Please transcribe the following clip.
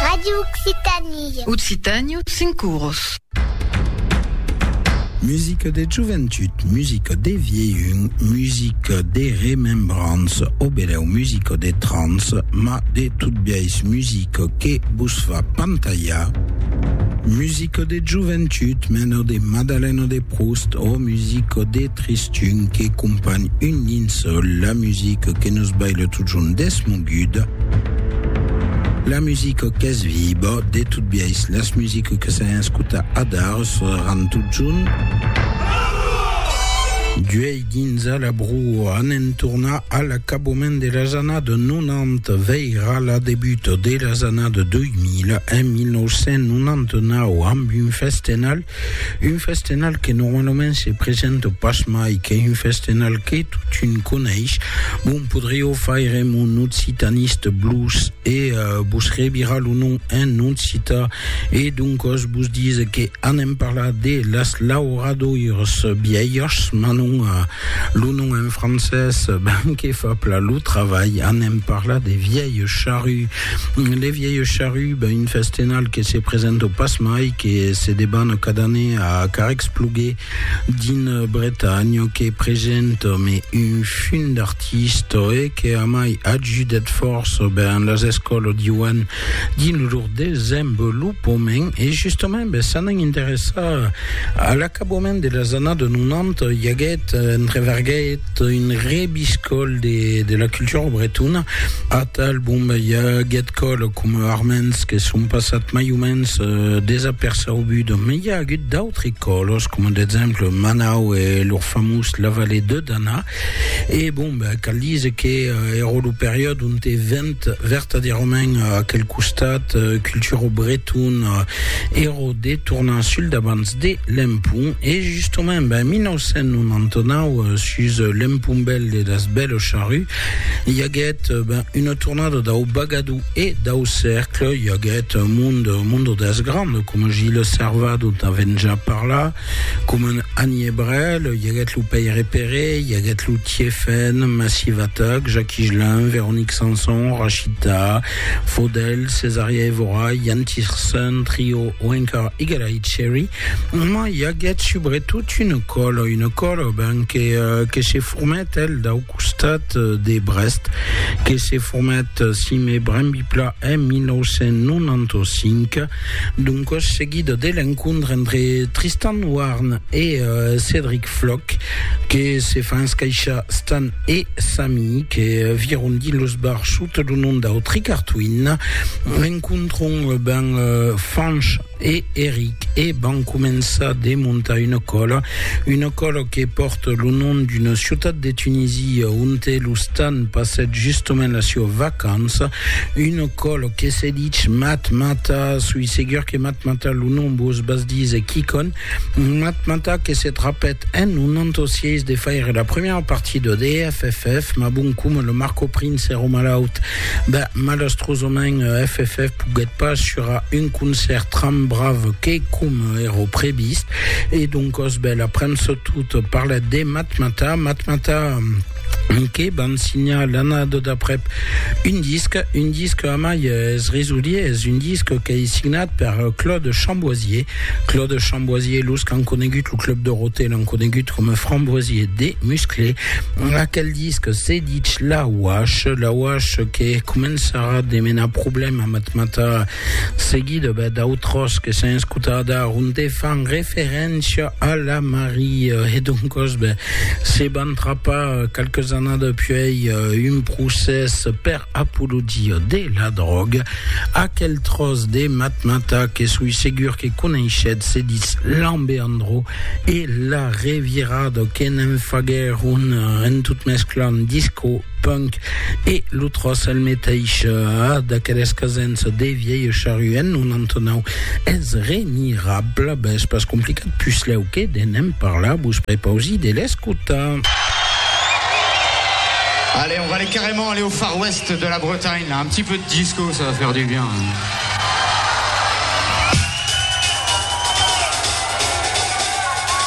Radio Occitanie. Occitània, cinc oros. Musica de joventut, musica de vieilhun, musica de remembranç, o benèu musica de trans, ma de tot biais musica que vos fa pantalhar. Musica de joventut, mena de Madalena de Proust, o musica de tristor, Tun que companh un dins la musica que nos baila totjorn desmoguda, la musica qu'es viba, de tot biais las musica que s'an escuta adar seràn totjorn d'uèi dins a la broa. Anem tornar a l'acabament de las annadas 90 veirà la debuta de las annadas 2000 en 1999 amb un festenal Un festenal que normalament se presenta pas mai qu'es un festenal que totun coneish, bon podriau faire mon occitaniste blues e vos revirar lo nom en occita e doncos vos dise que anem parlar de las lauradoires vièlhas, mas non, lo nom en francés ben que fa pla lo travalh, anem parlar de vièlhs charruts Le vièlh charrut, ben un festenal que se presenta pas mai, que se debana cada année a Carrècspluguer d'una Bretanha que presenta me un fum d'artista e que a mai ajudèt fòrça ben las escòlas diuan dins lor desenvolopament e justament ben s'anan interessar a l'acabament de las annadas 90 i aguèt entreverguèt un rebiscòl de la cultura bretona. Atal, bon, i a aguet còl coma arments que son passat mai o mens euh, desaperçaubut, me i a agut d'autres còlos, coma d'exemple Manau e lor famós La Vallée de Dana. E bon, cal dise que euh, ero lo periòde ont te vent vertadèrament aquel costat euh, cultura bretona, ero de tornar sul davant. de l'empun e justament ben 1999 sus l'empun bèl de las bèlos charrus i aguèt ben una tornada dau bagadou e dau cercle i aguèt mundo mundo dels grands coma Gilles Servat dont avèm ja parlat coma Anie Brel i aguèt lo Pèire Peré i aguèt lo Tiefèn Massivatac Jacqui Gelin Véronique Sanson Rachita Fodel, Cesarea Evora, Jan Tiersen Trio o encara Eagle Eye Cherry, ma i aguèt subretot una còla, una còla ben que, que se formèt el dau costat de Brest, que se formèt, si me brembi plan, en 1995, doncas seguida de l'encontre entre Tristan Warne e Cedric Floch, que se fan escaishar Stan e Sami, que vieron dins los bars sota lo nom d'Autry Cartwin, encontron ben Fanch e Eric e van començar de montar una còla, una còla que pòrta lo nom d'una ciutat de Tunisie onte lo Stan passèt justament la siua vacança, una còla que se dich Matmata, soi segur que Matmata lo nom vos bas dise quicònh, Matmata que se trapèt en un entosièis de faire la premièra partie de DFFF, mas bon coma lo Marco Prince èra malaut, ben, malastrosament FFF poguèt pas surar un concèrt tran brave que coma èra previst, e doncòs ben, la premsa tot parlèt de Matmata, Matmata. Miqué van signar l'annada d'aprèp un disc, un disc a mai es risoliers, un disc qu'ei signat per Claude Chamboisier. Claude Chamboisier, los qu'an conegut lo Club Dorothée l'an conegut coma Framboisier de Musclé. Aquel disc se ditz La Wash, La Wash que començarà de menar problèma a Matmata seguida bèth d'autròs que s'an escotat a onde fan referéncia a la Maria, e doncòs ben, se van trapar qualques annadas puèi un procès per apologia de la dròga, aquel tròç de matmata que soi segur que coneishetz se ditz Lambeandro, e la revirada que ne'n faguèron en tot mesclant disco punk e lo tros el meteis a d'aqueles casens de vièlh charru en 99 es remirable ben es pas complicat puslèu que de n'en parlar vos prepausi de l'escotar Allez, on va aller carrément aller au Far West de la Bretagne, là. un petit peu de disco, ça va faire du bien. Hein.